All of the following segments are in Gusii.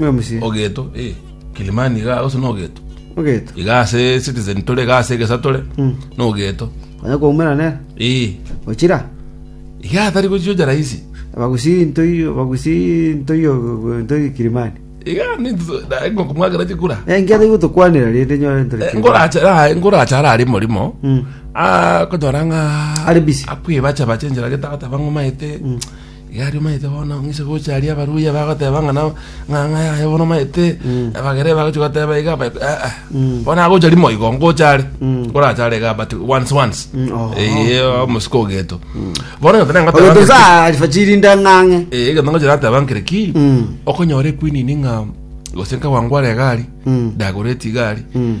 Oyo mosie. ogeto eh Kilimani iga gose nogeto Ogeto. iga ase Citizen tore iga ase egesa tore Mm. nogeto Onya koumera nere. eh Ochira. iga atari gochiocha rahisi Abagusi ntoi abagusi ntoi ogo- ntoi Kilimani. iga ninto- na ngokomwakera chikura Eh, nkia tari gotokwanera rende nyore ntore Eh, Kilimani. ngoracha ah, ngoracha ara ari morimo Mm. akonyora ng'a Ari busy. akwibacha bache enchera gete agateba ng'omaete Gaki omanyete bono ng'ise gocha aria abaruya bagoteba ng'a nao ng'a ng'a yaye bono omanyete abagere bagochi goteba iga aba aa bono agocha rimo igo ngocha are orache are iga but once once Mm, oho. eye omosiko ogeto bono egento nangoteba Ogeto ng'iriki- saa alifajiri nda ng'ang'e. Eh, egento ngocha nateba ng'iriki Mm. okonyora equinini ng'a gose nkagwangwara egari Mm. ndagoreti igari Mm.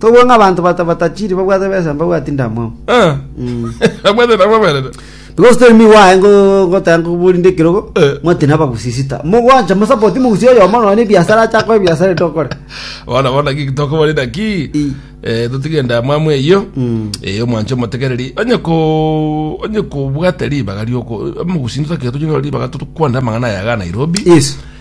Tobue ng'a abanto bata- batachiri babwate besa mbabwati ndamwamu. Eh. Mm. Abwate nabo aberere. Because tell me why ngo ngotanga ngobori nde kirogo Eh. mwati naba gusisita. Mugwancha musapoti mugusi oyo mono ni biashara acha kwa biashara tokore. Bona bona ki kitoko bari naki. I. Eh tutige ndamwamu eyo. Mm. Eh omwanche omotegereri. Onye ko onye ko bwate ribaga rioko. Mugusinza ke tunyora ribaga tukwanda mangana ya ga Nairobi. Yes.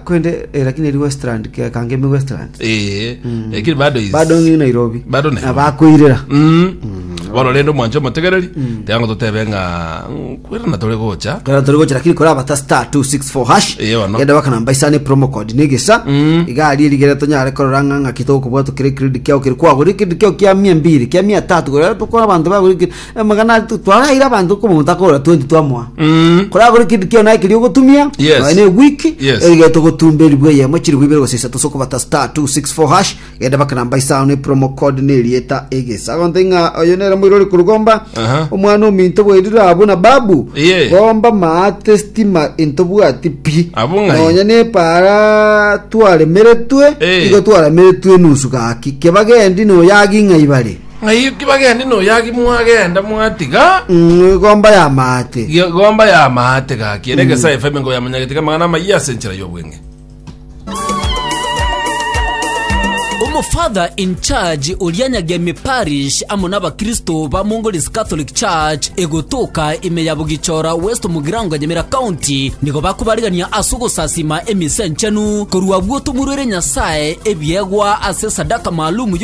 Korende eh, lakini eri Westland ke- kangemi Westland. Eh, lakini bado is- Bado ni Nairobi. Bado Nairobi. Na bakoirera. Mm. bono rende omwancho omotegereri tiango totebe ng'a mm, kwera na tore gocha Kana tore gocha lakini kora bata star 264 hash. Eh, ono. Genda bakana mbaisa ni promo code ni gisa. Mm. Igari rigere tonyare korora ng'a ng'a kitoko bwa tukire credit kiao kiri kwagori credit kiao kia 200 kia 300 gore to kwa bantu bagori Amagana aya tu- twagaire abanto kwa omonto akogora 20 twamoa Mm. koragore ekinto kiao naye keria ogotumia Yes. nonya na ewiki Yes. erige togotumba eribu eyemo chiribu ibere gose isato ase okobata star 264 hash genda baka namba isano ne promo code na erieta egesa agonte ng'a oyo nere moirori korugomba Aha. omwana ominto bwerire abu na babu Iye. gomba maate stima intobwati pi Abu ng'ai? nonya nepara twaremeretwe Eh. igo twarameretwe enusu gaki kebagendi noyagi ng'a ibare Ng'ai eki bagende noyaki mwagenda mwatiga? Igomba y'amaate. Igomba y'amaate gaki ere egesa efa emengo ya monyagetika amang'ana amayia ase enchera y'obweng'e. Omofather in charge oria Nyagemi Parish amo nabakristo ba Mongolese Catholic Church egotoka ime ya Bugichora West Mugirango Nyamira County nigo bakobarigania ase ogosasima emisa enchenu korwa abwo tomurwere Nyasae ebiegwa ase esadaka maalum